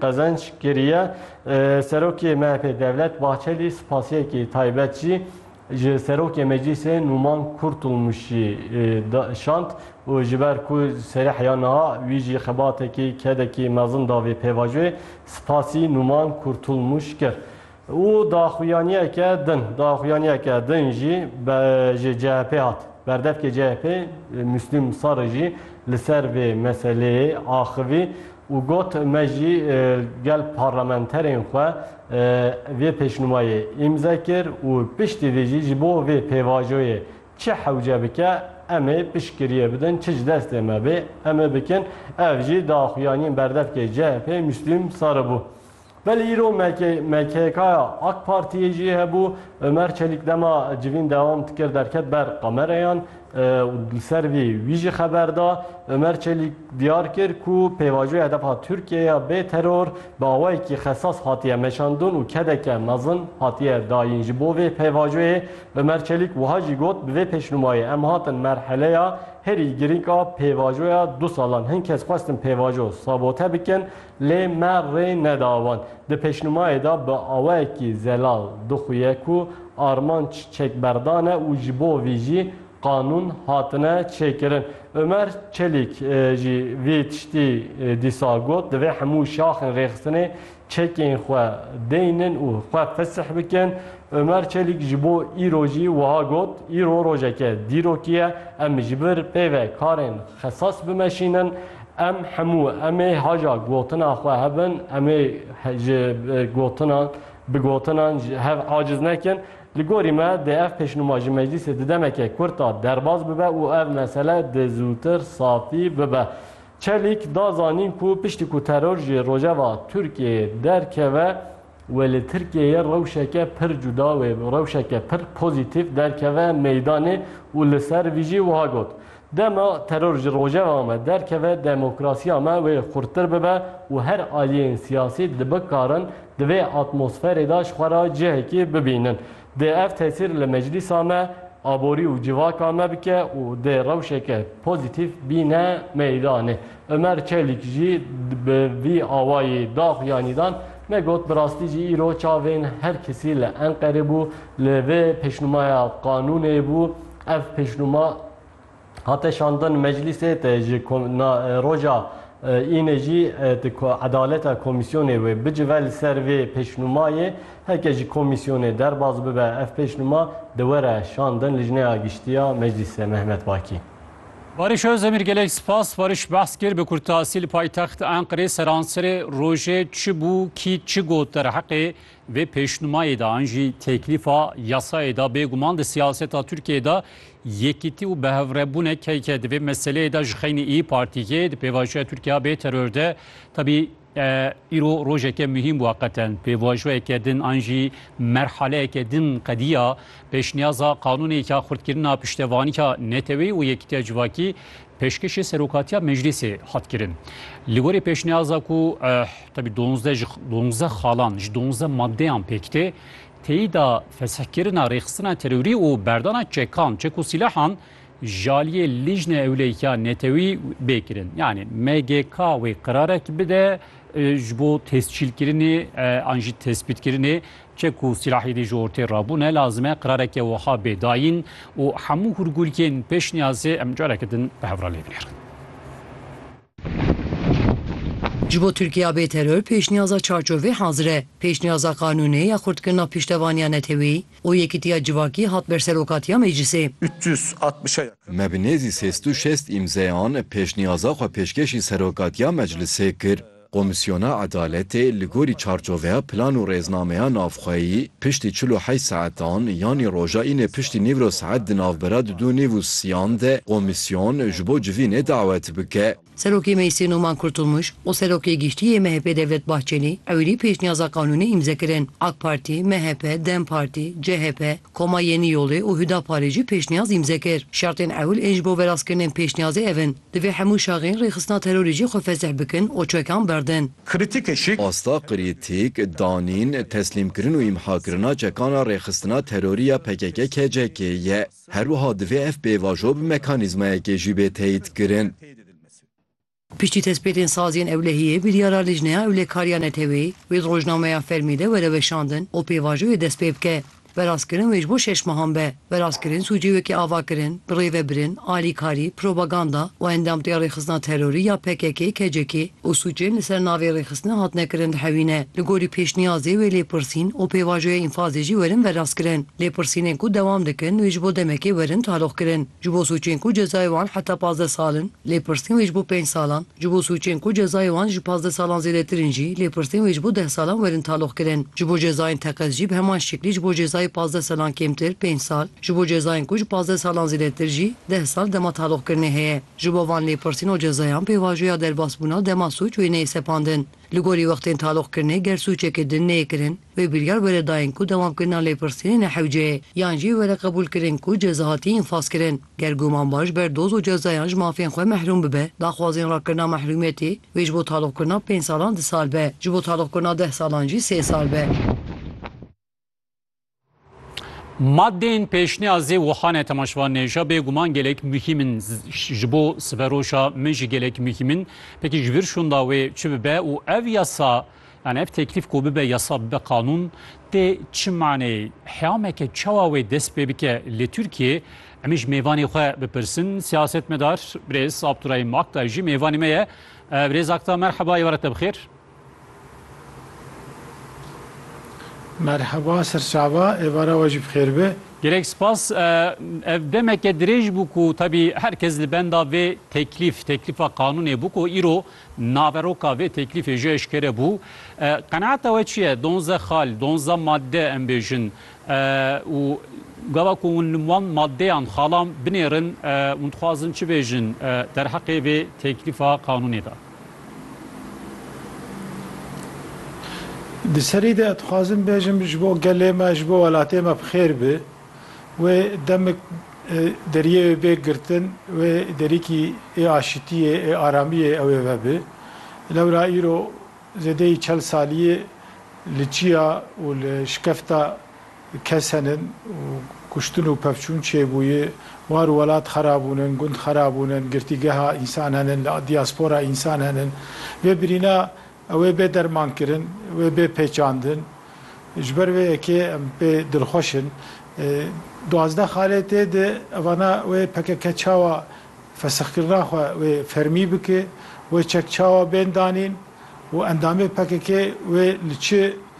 qezenç kiriye. Serokê MHP'ê Devlet Bahçelî spasiyekî taybet jî ji Serokê Meclîsê Nûman Kurtulmuşî şand û ji ber ku serê heya niha wî jî xebatekî kedekî mezin da vê pêvajoyê, spasî Nûman Kurtulmuş kir. Û daxuyaniyeke din, daxuyaniyeke din jî ji CHP'ê hat. Berdevkê CHP'ê Muslîm Sarı jî li ser vê meseleyê axivî û got, Me jî gel parlamenterên xwe vê pêşnûmayê îmze kir û piştî vê jî ji bo vê pêvajoyê çi hewce bike em ê piştgiriyê bidin, çi ji destê me bê em ê bikin. Ev jî daxuyaniyên berdevkê CHP'ê Muslîm Sarı bû. Belê îro MKK'ya AK Partiyê jî hebû. Omer Çelîk dema civîn dewam dikir derket ber kamereyan û li ser vê wî jî xeber da. Omer Çelîk diyar kir ku pêvajoyê hedefa Tirkiyeyê ya bê teror bi awayekî xesas hatiye meşandin û kedeke mezin hatiye dayîn. Ji bo vê pêvajoyê Omer Çelîk wiha jî got, Bi vê pêşnûmayê em hatin merheleya herî girîng a pêvajoya du salan. Hin kes xwestin pêvajo sabote bikin Lê me rê neda wan. Di pêşnûmayê de bi awayekî zelal dixuye ku armanc çekberdan e û ji bo vî jî qanûn hatine çêkirin. Omer Çelîk jî vî tiştî dîsa got, Divê hemû şaxên rêxistinê çekên xwe deynin û xwe fesih bikin. Omer Çelîk ji bo îro jî wiha got, Îro rojeke dîrokî ye. Em ji vir pê ve karên xesas bimeşînin. Em hemû em ê haja gotina xwe hebin, em ê ji gotinan bi gotinan ji hev aciz nekin. Li gorî me dê ev pêşnûma ji meclîsê di demeke kurt de derbas bibe û ev mesele dê zûtir safî bibe. Çelîk da zanîn ku piştî ku teror ji rojeva Tirkiyeyê derkeve, Wê li Tirkiyeyê rewşeke pir cuda wê rewşeke pir pozîtîf derkeve meydanê û li ser vî jî wiha got, Dema teror ji rojeva me derkeve demokrasiya me wê xurttir bibe û her aliyên siyasî dibikarin di vê atmosferê de ji xwe re cihekî bibînin. Dê ev tesîr li meclîsa me, aborî û civaka me bike û dê rewşeke pozîtîf bîne meydanê. Omer Çelîk jî bi vî awayî dax ya Nîdan ne got bi rastî jî îro çavên her kesî li Enqerê bû li vê pêşnûmaya qanûnê bû ev pêşnûma hate şandin meclîsê te ji roja înê jî ti edaleta komîsyonê wê bicive li ser vê pêşnûmayê heke ji komîsyonê derbas bibe ev pêşnûma di were şandin lijneya giştiya meclîsê Mehmet Bakî. Barış Özdemir gelek spas Barış behs kir bi kurtasî li paytext Enqirê seranserê rojê çi bû kî çi got derheqê vê pêşnumayê de an jî têklîfa yasayê de bêguman di siyaseta Tirkiyeyê de yekîtî û bihevrebûnek heye di vê meseleyê de ji xeynî Îyî Partî yê di pêvajoya Tirkiya bê teror de tevî Îro rojeke muhîm bû heqeten. Pêvajoyeke din an jî merhaleyeke din qediya pêşniyaza qanûnêka xurtkirina piştevanîka Neteweyî û Yekîtiya Civakî pêşkêşê Serokatiya Meclîsê hat kirin. Li gorî pêşniyaza ku tevî donzdeh ji donzdeh xalan ji donzdeh madeyan pêk tê, têyîda fesihkirina rêxistina terorî û berdana çekan, çek û sîlahan, Jaliyê Lijne Ewleyîka Netewî bê kirin. Yanî MGK wê qirarek bide ji bo tescîlkirinê an jî tespîtkirinê çi ku sîlahî dê ji ortê rabûne lazim e qirareke wiha bê dayîn û hemû hûrgûlkên pêşniyazê em careke din bi hev re lê binêrin. Ji bo Tirkiya bê teror pêşniyaza çarçovê hazir e. Pêşniyaza qanûnê ya xurtkirina pîştevaniya netewî, û Yekîtiya Civakî hat ber serokatiya meclisê. Me bi nêzî sês du şêst îmzeyan pêşniyaza xwe pêşkêşî serokatiya meclisê kir. Komîsyona Edaletê li gorî çarçoveya plan û rêznameya navxweyî piştî çil û heşt saetan yanî roja înê piştî nîvro saet di navbera di du nîv û siyan de komîsyon ji bo civînê dawet bike. Serokê Meclisê Noman Kurtulmuş û Serokê Giştî yê MHP'ê Devlet Bahçelî ewilî pêşniyaza qanûnê îmze kirin. Ak Partî, MHP, Dem Partî, CHP, Koma Yenî Yolê û Hudaparê jî pêşniyaz îmze kir. Şertên ewil ên ji bo verastkirinên pêşniyazê ev in, Divê hemû şaxên rêxistina terorê jî xwe fesih bikin û çekan berdin. Kritîkê şî. Asta kritîk, danîn, teslîmkirin û îmhakirina çekana rêxistina terorî ya pkk-KCK'ê ye. Her wiha divê ev pêvajo bi mekanîzmayekê jî bê teyîdkirin. Piştî tespêtên saziyên ewlehiyê, biryara Lijneya Ewlehkariya Neteweyê wê di rojnameya fermî de were weşandin û pêvajoyê dest pê bike. Werastkirin wê ji bo şeş mehan be. Werastkirin sûcê wekî avakirin, birêvebirin, alîkarî, propaganda û endamtiya rêxistina terorî ya pkk, kck, û sûcên li ser navê rêxistina hatine kirin dihewîne. Li gorî pêşniyazê wê lêpirsîn û pêvajoya înfazê jî werin verastkirin. Lêpirsînên ku dewam dikin wê ji bo demekê werin taloqkirin. Ji bo sûcên ku cezayê wan heta pazdeh sal in, lêpirsîn wê ji bo pênc salan, ji bo sûcên ku cezayê wan ji pazdeh salan zêdetir in jî lêpirsîn wê ji bo deh salan werin taloqkirin. Ji bo cezayên teqez jî bi heman şeklî ji bo cezayê pazdeh salan kêmtir, pênc sal, ji bo cezayên ku ji pazdeh salan zêdetir jî deh sal dema taloqkirinê heye. Ji bo van lêpirsîn û cezayan pêvajoya derbasbûna dema sûc wê neyê sepandin. Li gorî wextên taloqkirinê ger sûcekê din neyê kirin, wê biryar were dayîn ku dewamkirina lêpirsînê ne hewce ye yan jî were qebûlkirin ku ceza hatiye înfazkirin. Ger gumanbaş ber doz û cezayan ji mafên xwe mehrûm bibe, daxwazên rakirina mehrûmiyetê wê ji bo taloqkirina pênc salan du sal be, ji bo taloqkirina deh salan jî sê sal be. Madên pêşniya zê Wuhanê temaşvan nêşa bê guman gelek muhîm in ji bo siveroşa min jî gelek muhîm in. Pekî ji vir şonda wê çi bibe û ev yasa yani ev teklîf ku bibe yasa bibe qanûn tê çi maneyê? Heyameke çawa wê dest pê bike li Tirkiyê? Emê ji mêvanê xwe bipirsin. Siyasetmedar Birêz Abdurahîm Akta jî mêvanê me ye. Birêz Akta merheba, êware te bi xêr. Merheba serçava êvara we jî bi xêr be. Gelek spas. Ev demeke dirêj bû ku tevî her kes li benda vê teklîf, teklîfa qanûnê bû ku îro naveroka vê teklîfê jî eşkere bû. Qenaeta we çi ye? Donzdeh xal, donzdeh madde em bêjin û gava ku hûn wan maddeyan, xalan binêrin, hûn dixwazin çi bêjin derheqê vê teklîfa qanûnê de? Di serî de dixwazim bêjim ji bo gelê me, ji bo welatê me bi xêr be. Wê demik deriyê wê bê girtin, wê derîkî ê aşitiyê, ê aramiyê ew ê vebe. Lewra îro zêdeyî çel saliyê li çiya û li şikefta. Kes henin û kuştin û pevçûn çêbûyî, war û welat xerabûn in, gund xerabûn in, girtîgeha însan henin, li dîaspora însan henin. Vê birîna ew ê bê dermankirin, wê bê pêçandin. Ji ber vê yekê em pê dilxweş in. Duwazdeh xaletê di evana wê pkk çawa fesixkirina xwe wê fermî bike, wê çek çawa bên danîn û endamê pkk wê li çi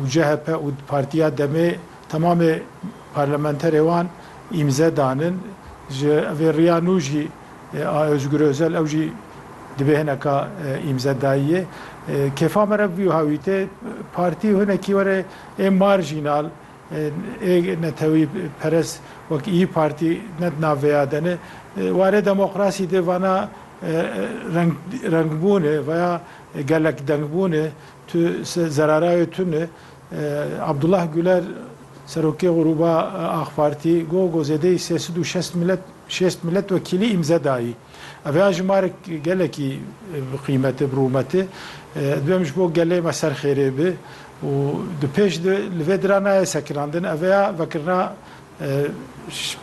û CHP û Partiya Demê temamê parlamenterê wan îmze danin. Ji vê riya nû jî a Ozgur Ozel ew jî dibê hineka îmze dayiyê. Kêfa me re bûyo hewî tê partî hinekî were ê marjînal ê netewî perest wek îyi partî ne di nav vêya de ne. Warê demokrasî de vana rengbûn e veya gelekdengbûn e Tu zerarayê tu ne. Abdullah Guler Serokê Grûba Ax Partî got ku zêdeyî sê sed û şest şêst miletwekîlî îmze dayî. Ev ya jimarek gelekî bi qîmet e, bi rûmet e. Dibem ji bo gelê me ser xêrê be û di pêş de li vê dira nayê sekinandin. Ev ya vekirina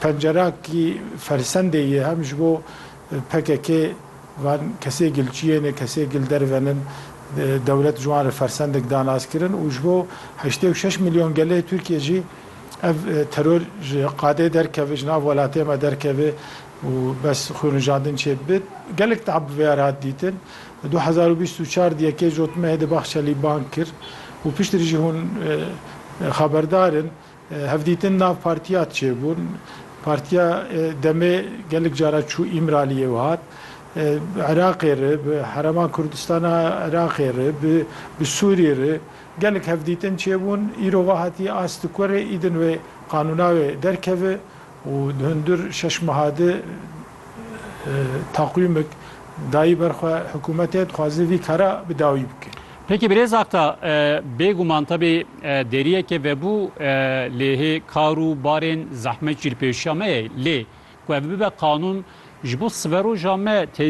pencerakî fersendê ye hem ji bo pkk van kesê gil çiyê ne kesê gil derve nin dewlet ji wan re fersendek da nas kirin û ji bo heştê û şeş milyon gelê Tirkiyê jî ev teror ji qadê derkeve ji nav welatê me derkeve û bes xwînrijandin çê bibe gelek tab bi vê ya re hat dîtin du hezar û bîst û çar di yekê ji otmehê de Bahçelî bang kir û piştrî jî hûn xeberdar in Hevdîtin nav partiya çê bûn. Partiya demê gelek cara çû Îmraliyê û hat Iraqê re, bi Herema Kurdistana Iraqê re, bi bi Sûrî re gelek hevdîtin çê bûn. Îro va hatiye astikurê îdin wê qanûna wê derkeve û di hundir şeş meha de takwîmek dayî ber xwe hikûmetê dixwaze vî kara bi dawî bike. Peki Birêz Akta, bêguman tevî deriyeke vebû lê hê kar û barên zehmet jî li pêşiya me ye lê ku ev bibe qanûn ji bo siveroja me